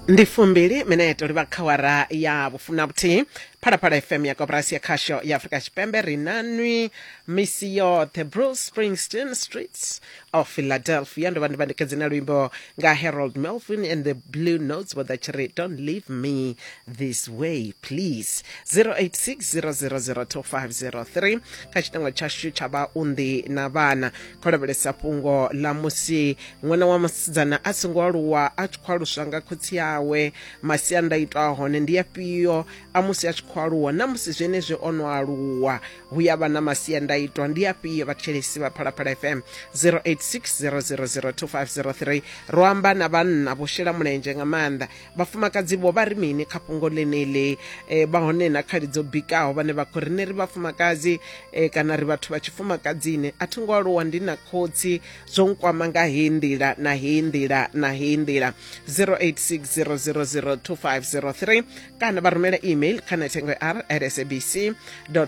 ndi fumbili mineto livha kha wara ya vhufuna vhuthihi phalaphala fm ya koporasi ya khasho ya afurika tshipembe ri na nwi misi yoṱhe bruce springsteen streets of philadelphia ndo vha ndi vhandikedzi na luimbo nga harold melvin and the blue notes vho ḓa tshi ri don't leave me this way please 086 0002503 kha tshitengo tshashu tsha vhaunḓi na vhana khou lavhelesa fhungo ḽa musi ṅwana wa musidzana a songo aluwa a tshi khou aluswa nga khotsi awe masiandaitwa a hone ndi afhio a musi a tshi khou aluwa na musi zwenezwi o no aluwa hu ya vha na masiandaitwa ndi afhio vhathetshelesi vha phalaphala fm 0860002503 ro amba na vhanna vho shela mulenzhe nga maanḓa vhafumakadzi vho vha ri mini kha fhungo ḽeneḽi e, vha hone na khali dzo bikaho vhane vha khou rine ri vhafumakadzi e, kana ri vhathu vha tshifumakadzini a thi ngo aluwa ndi na khotsi zwo nkwama nga heyi nḓila na heyi nḓila na heyi nḓila 0860002503 kana vha rumela email kha nethengo r at sabc co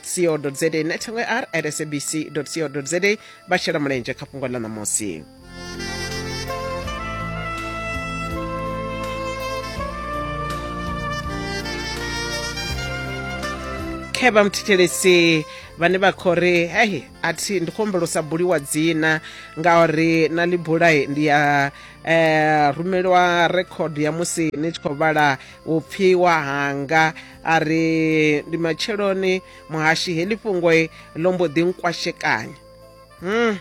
za nethengo r at sabc co za vha shela mulenzhe kha fhungo ḽa ṋamusi khe vha muthithelesi vhane vha khou ri hei a thi ndi khou humbela u sa buliwa dzina ngauri na ḽi bulai ndi ya um rumeliwa rekhod ya musi ni tshi khou vhala vhupfiwa hanga a ri ndi matsheloni muhashi heḽi fhungo ḽo mbo ḓi nkwashekanya hmm.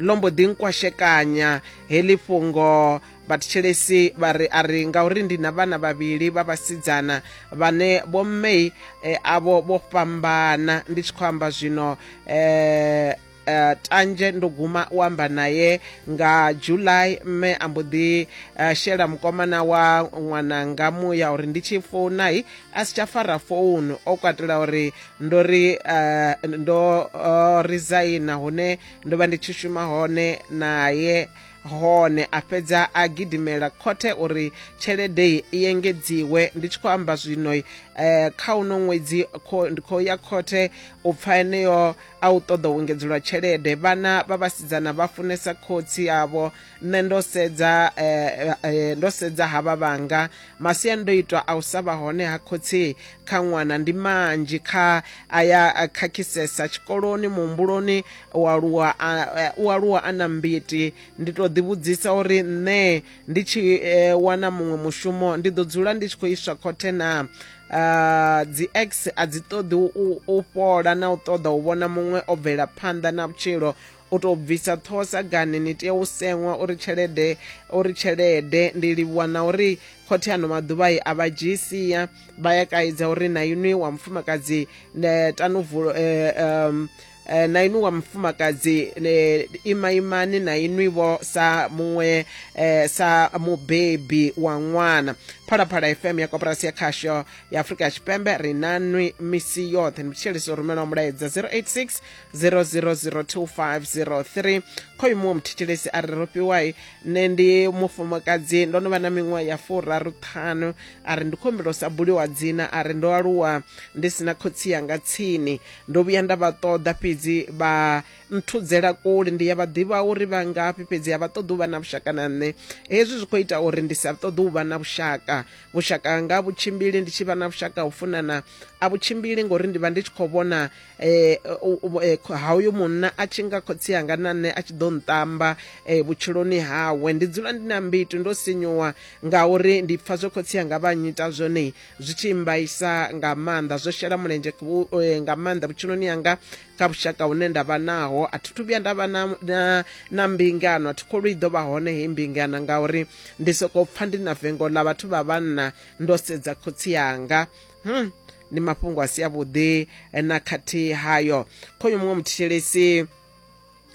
ḽo mbo ḓi nkwashekanya heḽi fhungo vhathetshelesi vha ri a ri ngauri ndi na vhana vhavhili vha vhasidzana vhane vho mmei e, eh, avho vho fhambana ndi tshi khou amba zwino eh, uh, tanzhe ndo guma u amba naye nga july mme a mbo ḓi uh, shela mukomana wa ṅwananga muya uri ndi tshi founai a si tsha fara founu o katela uri ndo ri uh, ndo uh, resigna hune ndo vha ndi tshi shuma hone naye hone a fhedza a gidimela khothe uri tshelede i engedziwe ndi tshi khou amba zwino eh, kha uno ṅwedzi ndi khou ya khothe u pfa eneyo a u ṱoḓa u engedzelwa tshelede vhana vha vhasidzana vha funesa khotsi avho nṋe ndo sedza eh, eh, ndo sedza havha vhanga masiandoitwa a u sa vha hone ha khotsi kha ṅwana ndi manzhi kha aya a khakhisesa tshikoloni muhumbuloni u aluwa a- eh, u aluwa a na mbiti ndi tou ḓivhudzisa uri nṋe ndi tshi eh, wana muṅwe mushumo ndi ḓo dzula ndi tshi khou iswa khothe na Ah, dzi x a dzi ṱoḓi u- u u fhola na u ṱoḓa u vhona muṅwe o bvela phanḓa na vhutshilo u tou bvisa ṱhoho sagani ni tea u seṅwa uri tshelede uri tshelede ndi livhuwa na uri khothe ano maḓuvha i a vha dzhii sia vha ya kaidza uri na inwi wa mufumakadzi ne tanuvulo eh, um, eh, na inwi wa mufumakadzi eh, ima imani na inwi vho sa muṅwe eh, sa mubebi wa ṅwana phalaphala fm ya koporasi ya khasho ya afurika tshipembe ri na nwi misi yoṱhe ndi tshitsheleso rumela mulaedza 086 0002503 khoyu muṅwe muthetshelesi a ri ro fhiwai nṋe ndi mufumakadzi ndo no vha na miṅwaha ya furaru ṱhanu a ri ndi khombelo sa buliwa dzina a ri ndo aluwa ndi sina khotsi yanga tsini ndo vhuya nda vha ṱoḓa fhedzi vha nthudzela kule ndi ya vha ḓivha uri vha ngafhi fhedzi a vha ṱoḓi u vha na vhushaka na nṋe hezwi zwi khou ita uri ndi sa ṱoḓi u vha na vhushaka vhushaka nga vhutshimbili ndi tshi vha na vhushaka u funana a vhutshimbili ngori ndi vha ndi tshi khou vhona eh, u- u- eh, kho- ha uyo munna a tshi nga khotsi anga na nṋe a tshi ḓo nṱamba eh, vhutshiloni hawe ndi dzula ndi na mbitu ndo sinyuwa ngauri ndi pfa zwe khotsi anga vha nyita zwone zwi tshi mbaisa nga maanḓa zwo shela mulenzhe ku- eh, nga maanḓa vhutshiloni yanga kha vhushaka hune nda vha naho a thi thu vhuya nda vha na, na, na mbingano a thi kholo i ḓo vha hone hei mbingano ngauri ndi sokou pfa ndi na vengo ḽa vhathu vha vhanna ndo sedza khotsi yanga hmm. ndi mafhungo a si avhuḓi na khathihi hayo khoyo muṅwe muthetshelesi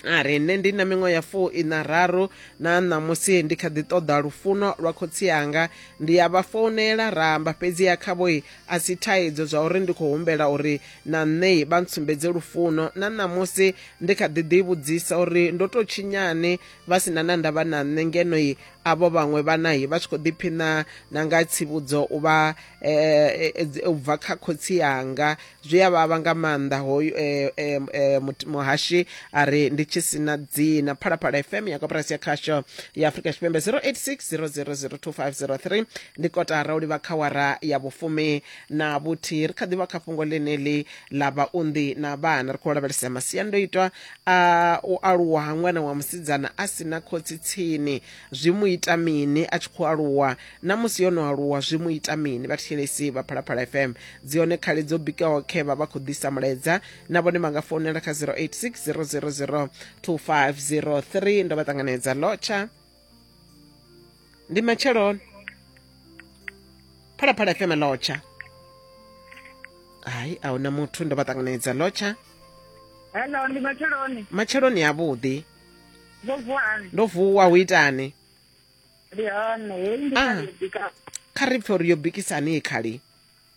a ri nṋe ndi na miṅwe ya fuu ina raru na ṋamusi ndi kha ḓi ṱoḓa lufuno lwa khotsi anga ndi ya vha founela ra amba fhedzi ya khavhoi a si thaidzo zwa uri ndi khou humbela uri na nṋei vha ntsumbedze lufuno na ṋamusi ndi kha ḓi ḓivhudzisa uri ndo tou tshinyani vha si na na ndavha na nṋe ngenoi avho vhaṅwe vhanahi vha tshi khou ḓiphiṋa na nga tsivhudzo u vha eh, eh, eh, u bva kha khotsi anga zwi a vhavha nga maanḓa hoyu muhashi a ri ndi tshi sina dzina phalaphala fm ya koporasi ya khasho ya afrika tshipembe 086 0002503 ndi kotara u livha kha wara ya vhufumi na vhuthihi ri kha ḓivha kha fhungo ḽeneḽi ḽa vhaunḓi na vhana ri khou lavhelesa masiandoitwa A, U aluwa ha ṅwana wa musidzana a si na khotsi tsini zwi mu ita mini a tshi khou aluwa? Na musi yo no aluwa zwi mu ita mini? Vhathetshelesi vha Phalaphala FM dzi hone khali dzo bikaho khe vha vha khou ḓisa mulaedza na vhone vha nga founela kha 086 000 2503 ndo vha ṱanganedza lotsha ndi matsheloni phalaphala fm lotsha hayi a huna muthu ndo vha ṱanganedza lotsha hello ndi matsheloni matsheloni avhuḓi ndo vuwani ndo vuwa hu itani ndi hone heyi ndi Ah. khaedu ka kha ri pfe uri yo bikisani khali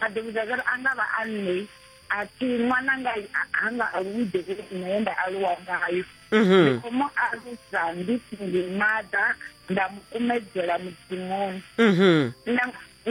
vha ḓo vhudza zwa uri a nga vha a nṋe a thi ṅwananga ha nga aluwi devhele nṋe ye nda aluwa ngayo mhm. ndi khou mu alusa ndi ndi maḓa nda mu kumedzela mudzimuni mhm.